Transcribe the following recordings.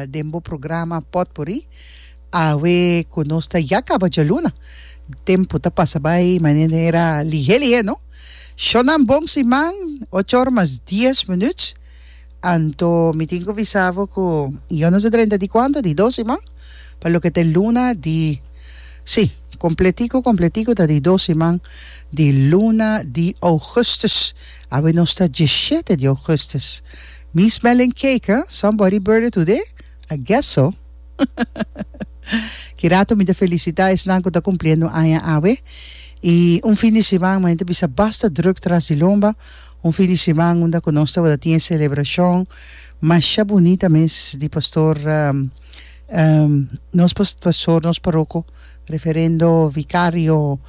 den bo programa potpuri awe cu nos ta ya caba djaluna tempo ta pasa bay manera lihe lihe no shonan bon siman ocho or mas dies minuut anto mi tin cu bisa bo cu yo no ta drenta di cuanto di dos siman pa loke ta e luna di si completico completico ta di dos siman di luna di augustus awe nos ta diecisiete di augustus Mi smelling cake huh? Somebody birthday today? I guess so. Kirato mi ta felicita esnan cu ta cumpliendo aña awe. Y un fin di siman mi ta bisa basta druk tras di lomba. Un fin di siman unda cu nos tabata tin e celebracion masha bunita mes di pastor nos pastor nos parroco referendo vicario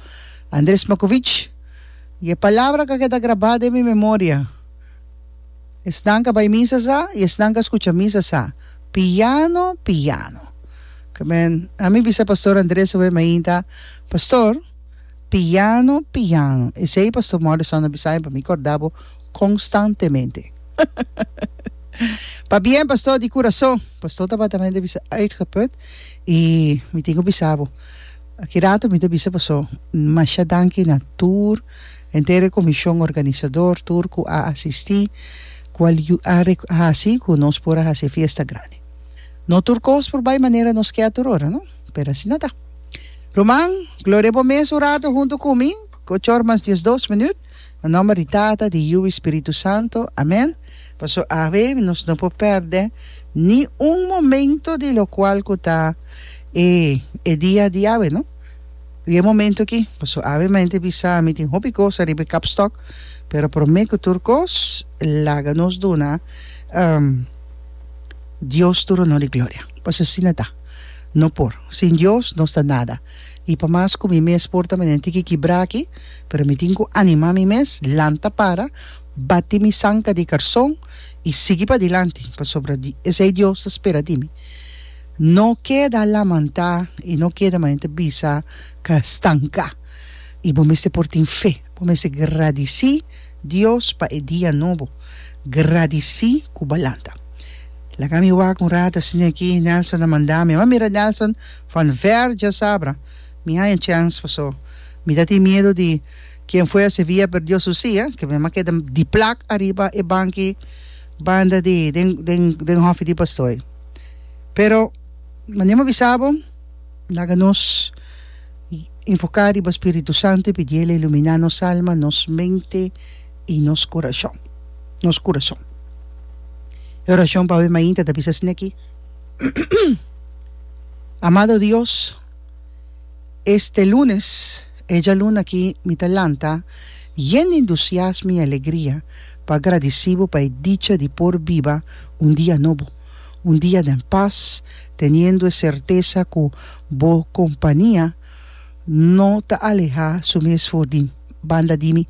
Andres Makovich. Y e palabra cu a keda graba den mi memoria. Esnan ka bai misa sa i esnan ka skucha misa sa. Piano, piano. Kmen, ami bisa Pastor Andres awema ainda, Pastor, piano, piano. Esei Pastor Morrison a bisaimi pa mi korda bo konstantemente. Pabien, Pastor, di kurason. Pastor tabatamende bisa uitgeput i mi tin ku bisa bo, aki rato mi ta bisa paso masha danki na tur Henter e Comishon Organisador tur cu a asisti cu a hasi cu nos por a hasi e fiesta grandi. No tur cos por bay manera nos kier tur ora, no? Pero asina ta. Ruman, gloria bo mes un rato hunto cu mi, cu ocho or mas diesdos minuut, na nomber di Tata, di Yiu y Spiritu Santo. Amen. Paso awe nos no por perde ni un momento di locual cu ta e dia di awe, no? Riba e momento aki, paso Ave Mente bisa mi tin hopi cosa riba e kapstok, pero prome ku tur kos laga nos duna Dios tur honor i gloria, paso asina ta, no por, sin Dios nos ta nada, i pa mas ku mi mes por ta menen tin ki kibra aki, pero mi tin ku anima mi mes, lanta para, bati mi sanka di karson i sigui padilanti, pasobra esei Dios ta spera di mi. No keda lamantá i no keda manente bisa ka stanka i bo mester por tin fe. Bo mester gradisí Dios pa e dia nobo. Gradisí ku bo a lanta. Laga mi wak un rato asina aki. Nelson a manda mi. Mi a mira Nelson van ver djasabra. Mi haña chèns paso mi ta tin miedu di Quien fue a Sevilla a perdió su silla, ke mi a keda di plak ariba e banki banda di den den den hòfi di pastoe. Pero mane mi a bisa bo, laga nos enfoká riba spiritu santu i pidi el a iluminá nos alma, nos mente i nos kurashon nos kurason. E orashon pasobra mainta ta bisa asina aki, Amado Dios, este lunes. E djaluna aki mi ta lanta yen di endusiasmo i alegria pa gradisí bo pa e dicha di por biba un dia nobo, un dia den pas, teniendo e sertesa ku bo kompania no ta alehá su mes for di banda di mi.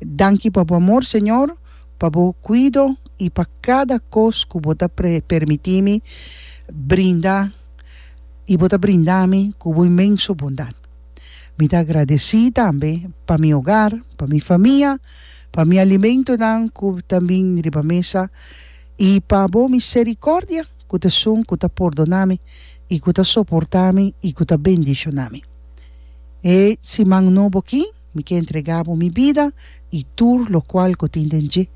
Danki pa bo amor, Señor, pa bo kuido i pa kada kos ku bo ta permití mi brinda i bo ta brinda mi ku bo inmenso bondat. Mi ta agradesí tambe pa mi ogar, pa mi famia, pa mi alimentonan ku ta bin riba mesa i pa bo miserikòrdia ku ta sun ku ta pordoná mi i ku ta soportá mi i ku ta bendishoná mi. E siman nobo akí mi ke entregá bo mi bida i tur lokual ku tin den dje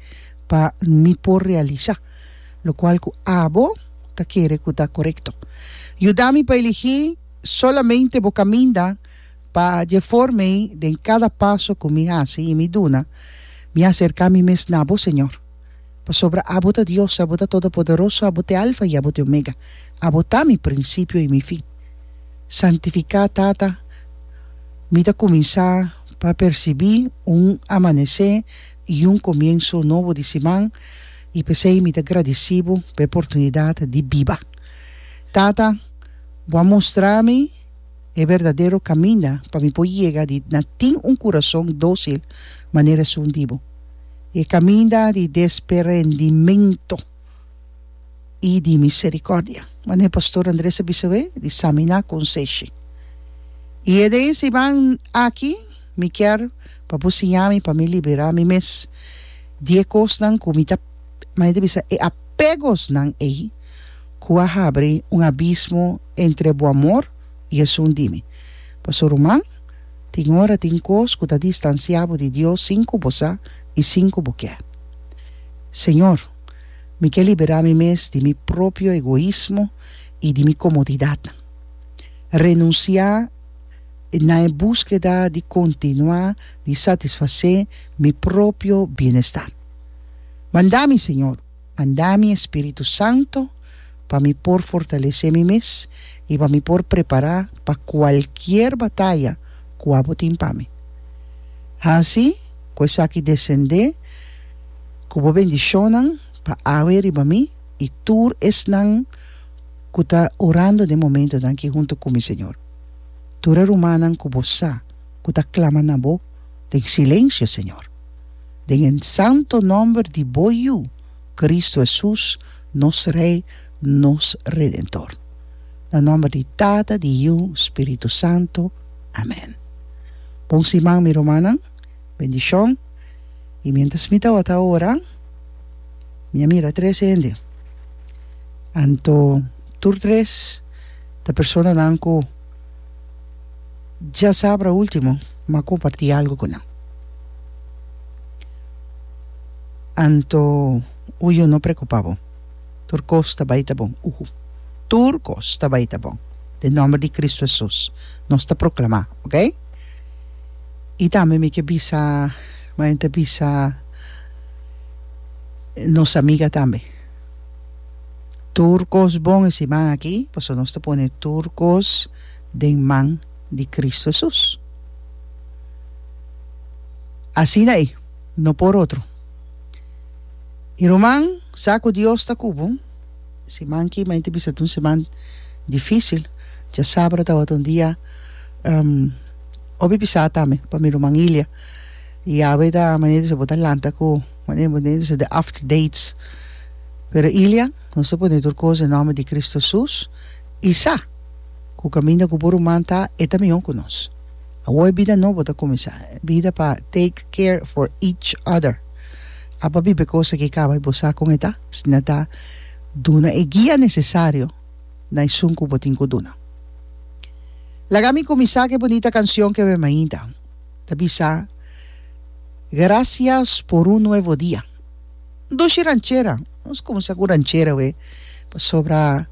pa mi por realisá lokual ku abo ta kere ku ta korekto. Yuda mi pa eligí. Solamente bo caminda pa dje for mei den cada paso cu mi haci y mi duna, mi acerca mi mes na bo, Señor. Pasobra abo ta Dios, abo ta Todopoderoso, abo t'e Alfa y abo t'e Omega, abo ta mi principio y mi fin. Santifica, Tata, mi ta cuminsa pa percibi un amanece y un comienso nobo di siman y p'esey mi ta gradici bo p'e portunidad di biba. Tata. Bo a mustra mi e berdadero kaminda pa mi por yega di na tin un kurason dósil manera esun di bo, e kaminda di desperendimentu i di miserikòrdia. Manera e pastor Andres a bisa we, di saminá kon seshi. I e den siman aki mi kier pa bo siña mi pa mi liberá mi mes di e kosnan ku mi ta, manera ta bisa, e apegosnan ei. cu a habri un abismo entre bo amor y esun di mi. Paso, ruman, tin ora tin cos cu ta distancia bo di Dios sin cu bo sa y sin cu bo kier. Señor, mi kier libera mi mes di mi propio egoismo y di mi comodidadnan. Renuncia na e busqueda di continua di satisface mi propio bienestar. Manda mi, Señor. Manda mi Espíritu Santo pa mi por fortalesé mi mes i pa mi por prepará pa kualkier bataya ku abo tin pa mi. Hasi ku esaki desendé ku bo bendishonnan pa awe riba mi i tur esnan ku ta orando den momentunan aki huntu ku mi, Señor. Tur e rumannan ku bo sa ku ta klama na bo den silensio, Señor. den e santo nomber di bo Yu, Kristu Hesus, nos Rei, nos Redentor. Na nomber di Tata, di Yu, Spiritu Santo. Amèn. Bon siman mi rumannan. Bendishon. I miéntras mi tabata ora, mi a mira tres hende. Anto tur tres ta personanan ku. Dja sabra ultimo m'a comparti algo cu nan. Anto u yo no preocupa bo. Tur cos ta bay ta bon. Uhu. Tur cos ta bay ta bon. Den nomber di Cristo Jesus nos ta proclama, ok? Y tambe mi ke bisa, mi ta bisa nos amiga tambe. Tur kos bon e siman aki, pasobra nos ta pone tur kos den man di Kristu Hesus. Asina ei, no por otro. I ruman, sa ku Dios ta ku bo. Siman ki mainti bisa ta un siman difisil. Djasabra tabata un dia hopi pisá tambe pa mi ruman Ilia. I awe ta manera di bo ta lanta ku. Manera bo dentro sa di after dates. Pero Ilia, nos ta pone tur cos den nomber di Cristo Hesus y sa cu caminda cu bo ruman ta e ta miho cu nos. Awo e bida nobo ta cuminsa, e bida pa take care for each other. A pa biba e cos aki caba y bo sa con e ta, asina ta duna e guia necesario na esun cu bo tin cu duna. Laga mi cuminsa cu e bonita cancion cu awor e mainta. ta bisa, Gracias por un nuevo dia. Dushi ranchera, nos kuminsá ku ranchera awe pasobra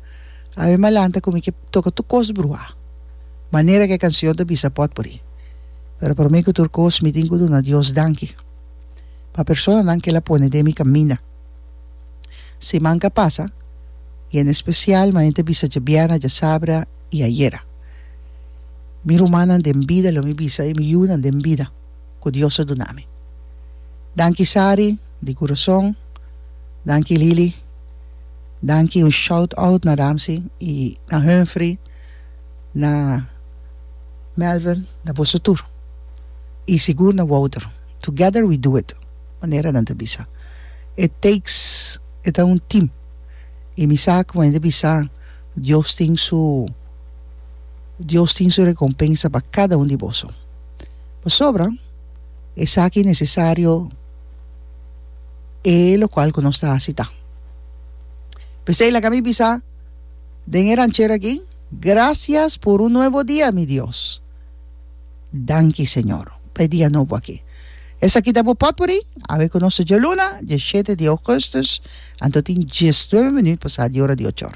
awe m'a lanta ku mi ke toka tur kos bruhá, manera ku e kansion ta bisa pòt por i. Pero promé ku tur kos mi tin ku duna Dios danki pa personanan ku el a pone den mi kaminda. Siman k'a pasa i en espesial manera mi ta bisa djabièrnè, djasabra, i ayera. Mi rumannan den bida, lo mi bisa e mi yunan den bida ku Dios a duna mi. Danki Sari, di kurason, danki Lili, danki un shout out na Ramsey i na Humphrey, na Melvin, na boso tur i sigur na Wouter, together we do it manera nan ta bisa. It takes, e ta un team i mi sa ku mei di bisa, Dios tin su Dios tin su recompensa pa cada un di boso. Pasobra esaki necesario e locual cu nos ta haci ta. P'esey laga mi bisa den e ranchero aki, Gracias por un nuevo dia, mi Dios. Danki Señor pa e dia nobo aki. Esaki ta bo potpuri, awe ku nos ta dje luna, dje shete di ougustus, anto tin diesnuebe minüt pasá di ora di ochor.